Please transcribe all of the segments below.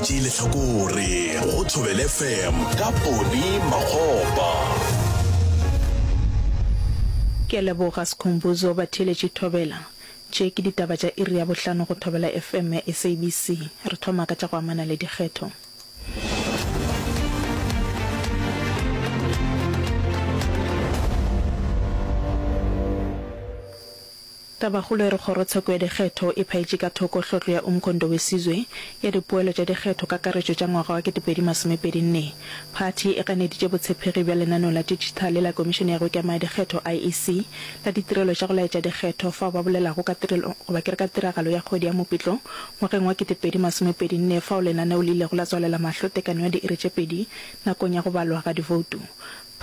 Tšee lehlakore go Thobel FM ka Poni Makgopa. Ke a leboga Skhumbuzo Batheeletši Thobela. Tše ke ditaba tša iri ya bohlano go Thobela FM ya SABC. Re thoma ka tša go amana le dikgetho. Tabakgolo e re Kgorotsheko ya Dikgetho e phaetše ka thoko tlhotlo ya Umkhondo Wesizwe ya dipoelo tša dikgetho kakaretšo tša ngwaga wa 2024. Phathi e ganeditše botshephegi bja lenaneo la ditšhithale la Komišene ya go Ikemaya Dikgetho, IEC, la ditirelo tša go laetša dikgetho fao ba bolelago ka tirelo goba ke re ka tiragalo ya kgwedi ya Mopitlo ngwageng wa 2024 fao lenaneo le ilego la tswalela mahlo tekanyo ya diiri tše pedi nakong ya go balwa ga divoutu.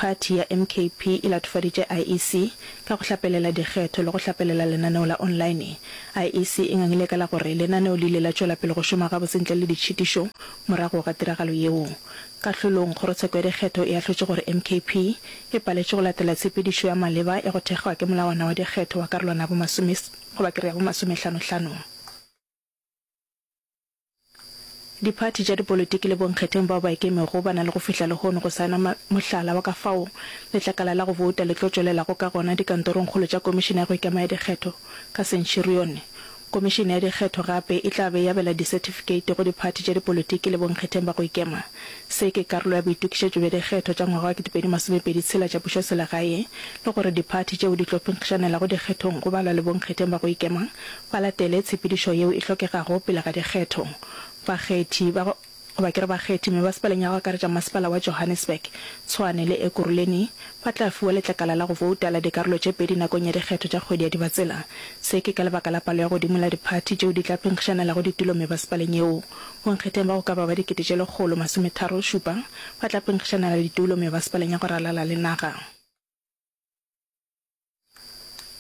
Phathi ya MKP e latofaditše IEC ka go hlapelela dikgetho le go hlapelela lenaneo la online. IEC e ngangile ka la gore lenaneo le ile la tšwela pele go šoma gabotse ntle le ditšhitišo morago ga tiragalo yeo. Kahlolong, kgorotsheko ya dikgetho e ahlotše gore MKP e paletše go latela tshepedišo ya maleba ya go thekgwa ke molawana wa dikgetho wa karolwana ya bo masome, goba ke re ya bo masomehlanohlano. Diphathi tša dipolotiki le bonkgetheng bao ba ikemego ba na le go fihla lehono go saena ma, mohlala wa ka fao letlakala la go bouta le tlo tšwelelago ka gona dikantorongkgolo tša Komišene ya go Ikema ya Dikgetho ka Centurione. Komišene ya Dikgetho gape e tla be e abela disetifikeiti go diphathi tša dipolotiki le bonkgetheng ba go ikema. Se ke karolo ya boitokišetšo bja dikgetho tša ngwaga wa 2026 tša pušoselegae le gore diphathi tšeo di tlo phenkgišanelago dikgethong go balwa le bonkgetheng ba go ikema ba latele tshepedišo yeo e hlokegago pele ga dikgetho. Bakgethi ba goba ke re bakgethi mebasepaleng ya go akaretša Masepala wa Johannesburg, Tshwane le Ekurhuleni ba tla fiwa letlakala la go vouta la dikarolo tše pedi nakong ya dikgetho tša kgwedi ya Dibatsela. Se ke ka lebaka la palo ya godimo la diphathi tšeo di tla phenkgišanelago ditulo mebasepaleng yeo. Bonkgetheng ba go ka ba ba dikete tše lekgolo masometharo šupa ba tla phenkgišanela ditulo mebasepaleng ya go ralala le naga.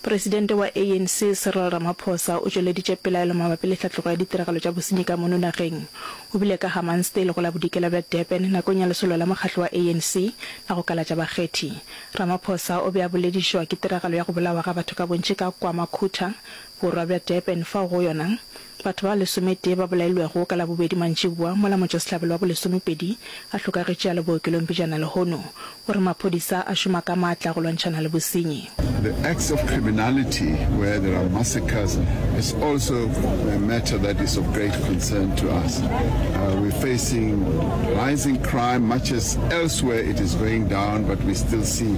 Presidente wa ANC Cyril Ramaphosa o tšweleditše pelaelo mabapi le tlhatlogo ya ditiragalo tša bosenyi ka mono nageng. O bile ka Hammansdale go la Bodikela bja Durban nakong ya lesolo la mokgatlo wa ANC la go kalatša bakgethi. Ramaphosa o be a boledišwa ke tiragalo ya go bolawa ga batho ka bontši ka KwaMakhutha, borwa bja Durban, fao go yona Batho ba lesometee ba bolailwego ka Labobedi mantšiboa mola motšwasehlabelo wa bolesomepedi a hlokagetše a le bookelong pejana lehono. O re maphodisa a šoma ka matla go lwantšhana le bosenyi. The acts of criminality where there are massacres is also a matter that is of great concern to us. We're facing rising crime much as elsewhere it is going down but we still see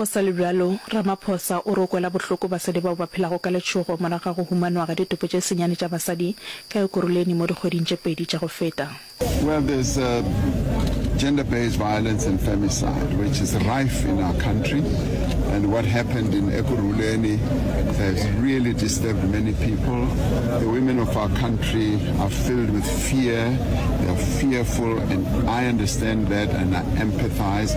Go sa le bjalo, Ramaphosa o re o kwela bohloko basadi bao ba phelago ka letšhogo morago ga go humanwa ga ditopo tše senyane tša basadi ka Ekurhuleni mo dikgweding tše pedi tša go feta. Well, there's uh, gender-based violence and femicide, which is rife in our country. And what happened in Ekurhuleni has really disturbed many people. The women of our country are filled with fear. They are fearful, and I understand that and I empathize.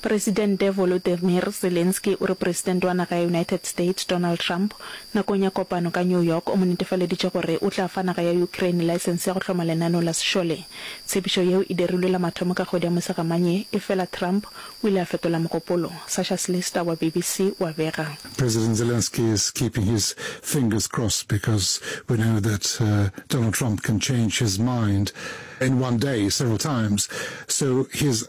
Presidente Volodymyr Zelensky o re Presidente wa naga ya United States, Donald Trump, nakong ya kopano ka New York o mo netefaleditše gore o tla fa naga ya Ukraine laesense ya go hloma lenaneo la sešole. Tshepišo yeo e dirilwe la mathomo ka kgwedi ya Mosegamanye ye, efela Trump o ile a fetola mogopolo, Sasha Slister wa BBC o a bega. President Zelensky is keeping his fingers crossed because we know that Donald Trump can change his mind in one day several times, so he is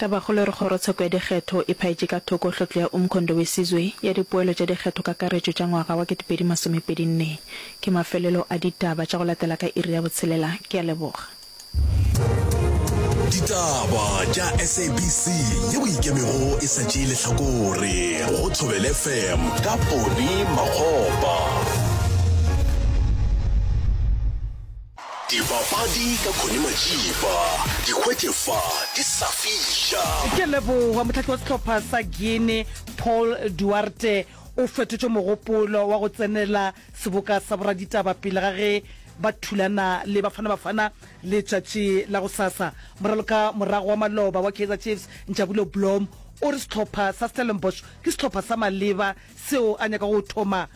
Tabakgolo e re Kgorotsheko ya Dikgetho e phaetše ka thoko tlhotlo ya Umkhondo Wesizwe ya dipoelo tša dikgetho kakaretšo tša ngwaga wa 2024. Ke mafelelo a ditaba tša go latela ka iri ya botshelela. Ke a leboga. Ditaba tša SABC ye o ikemego e sa tšee lehlakore go Thobele FM ka Ponny Makgopa. Dibapadi ka Connie Majiba, di hwetše fa di sa fiša. Ke leboga mohlahli wa sehlopha sa Guinea Paul Duarte o fetotše mogopolo wa go tsenela seboka sa boraditaba pele ga ge ba thulana le Bafana Bafana letšatši la gosasa. Moraloka morago wa maloba wa Kaizer Chiefs Njabulo Blom o re sehlopha sa Stellenbosch ke sehlopha sa maleba seo a nyakago go thoma